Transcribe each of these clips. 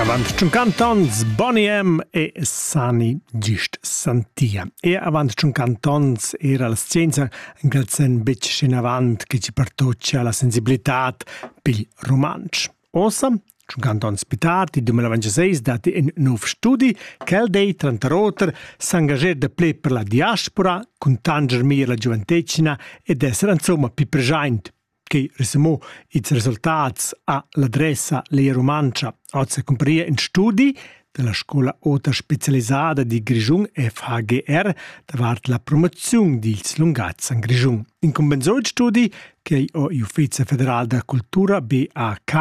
Avant 50 ans Bonnie M e Sani gist santia. E avant 50 ans era la scienza grazian betg schinavant che ci partocia la sensibilità pil romansch. Ossa, 50 ans pitat, il 2026 dati in nov studi, quel dei, tranter oter, s'engager de ple per la diaspora, contanger mir la gioventecina ed essere insomma più present che resumò ils resultats a l'adressa Lea Rumantscha oz cumpariva in studi della scola ota specialisada di Grischun FHGR davart la promoziun dils lungatgs en Grischun. In compensoid studi che ho il Ufficio federal da cultura BAK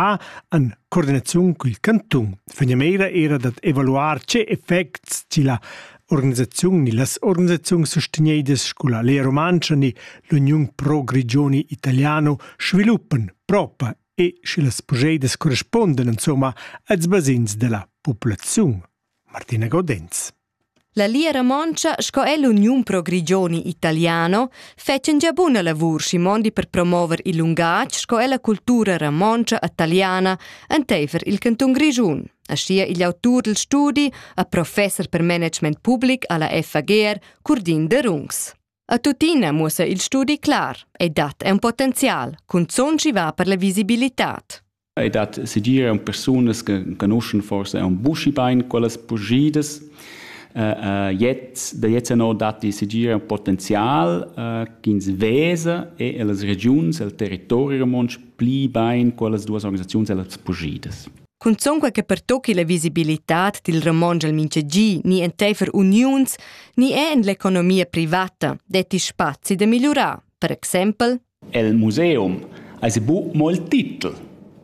an coordinaziun col cantun. Fegnameira era dat evaluar ce effects chi la organisaziun ni las organisaziuns sustegnedas sco la Lea Rumantscha ni l'Uniun Pro Grigioni Italiano sviluppan propa e sche las progedas correspondan insomma als basegns della populaziun. Martina Godenz. La Lia Ramontscha sco è l'Uniun Pro Grigioni Italiano fetschen gia buna lavur si mondi per promover il lungatg sco è la cultura ramontscha italiana enteifer il canton Grischun. aschia igl autur dil studi e professer per management public alla FAGR, Curdin Derungs. A tuttina muossa il studi clar e dat è un potenzial, cunzon ci va per la visibilitad. E dat sedire un personas che conoscono forse un busci bein quelle spugides. Uh, uh, jetzt, da jetzt no dat die sedire un potenzial uh, che ins vesa e e las regions, el territorio romans pli bein quelle due organisazioni e las spugides. Cunzun quei che pertochi la visibilitad dil romontsch el mintgagi ni enteifer uniuns ni è en l'economia privata detti spazi da migliurar, per exempel El museum ais bu molt titel,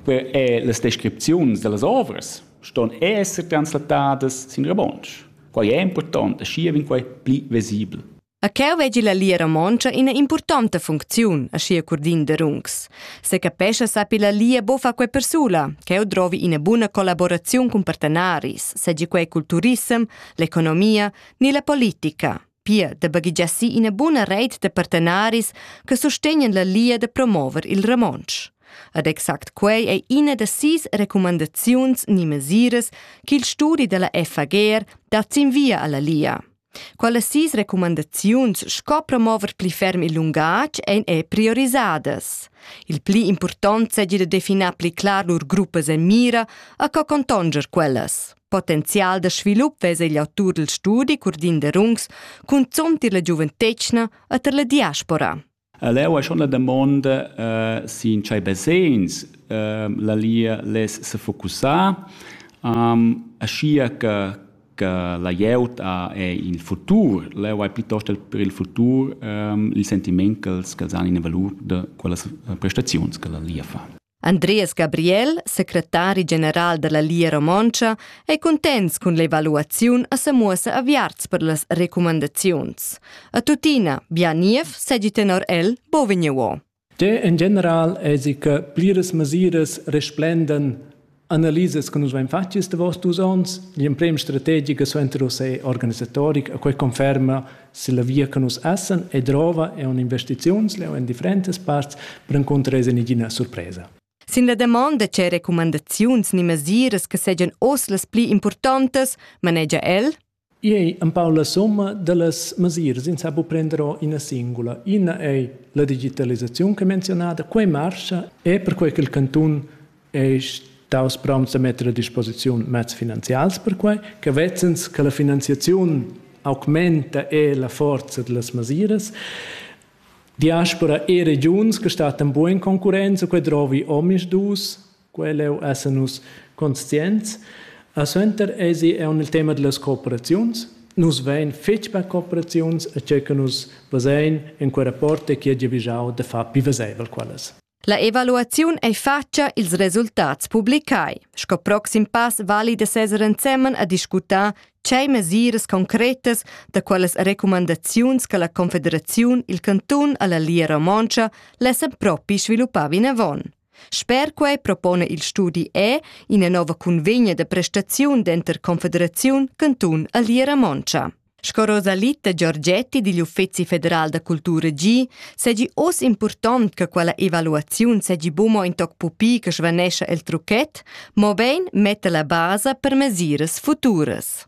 e las descripziuns da las ovras ston esser translatadas sin romontsch. Quai è important e schi vegn quai pli vesibel. A cheu vegi la Lia Romontscha ina impurtonta funcziun, aschia curdind de runcs. Se capescha sappi la Lia bo fa quei persula, cheu drovi ina buna collaboraziun cun partenaris, segi quei cul turissem, l'economia ni la politica. Pia de baghigiassi ina buna reit de partenaris che sostegnan la Lia de promover il Ramonsch. Ad exact quei ei ina da sis recumandaziuns ni mesiras ch'il studi dalla FAGR dat sin via alla Lia. Quellas sis recumandaziuns sco promover pli ferm il lungatg ein era priorisadas. Il pli impurtont seigi da definar pli clar lur gruppas e mira e co contonger quellas. Potenzial da svilup vesa igl autur dil studi Curdin Derungs cunzont tier la giuventetgna e tier la diaspora. Leu ei schon la damonda eh, sin tschei basegns eh, la Lia less sefocussar, ehm, aschia che che la glieud ha il futur. Leu hai piuttosto per il futur ehm, il sentiment che els han ina valur da quellas eh, prestaziuns che la Lia fa. Andreas Gabriel, secretari general dalla Lia Romontscha, ei cuntents cun l'evaluaziun e semuossa aviarts per las recumandaziuns. A tuttina, bia niev segi tenor el bo vegniuo. De en general esi che pliras mesiras resplenden Analisas che nus vein fatg ils davos dus onns, l'emprema strategica suenter oss è organisatoric e quei conferma se la via che nus essen e drova è un'investiziuns leo in differentas parts per incontrar nagina surpresa. Sin la damonda c'è recumandaziuns ni mesiras che segian oz las pli importantas, manegia el, I ei empau la summa dallas mesiras, ins ha buca prender ora ina singula. Ina ei la digitalisaziun che menzionada, quei marscha e perquei che il cantun ei staus promts da metter a disposiziun mezs finanzials per quei, che vezzens che la finanziaziun augmenta e la forza dallas mesiras. Diaspora e regiuns che stattan buca in concurrenza, quei drovi omis dus Quell'eu esa nus conscients. E suenter esi eau nel tema dellas cooperaziuns. Nus vain fich per cooperaziuns e che che nus vezain in quel rapport è chi ha giavüschau da far pü vezaivel quellas. La evaluaziun ei fatscha ils resultats publicai. Sco proxim pass vali da seser ensemen a discutar tgei mesiras concretas da quelles recumandaziuns che la Confederaziun, il cantun alla Lia Romontscha lessa propi sviluppar vinavon. Sper quai propona il studi E ina nova cunvegna da prestaziun denter Confederaziun, cantun a Liera Montscha. Sco Rosalitta Giorgetti digl Uffeci federal da cultura gi, segi oz impurtont che quella evaluaziun segi bumo in toc pupi che svanescha el trucchet, mo bein metta la basa per mesiras futuras.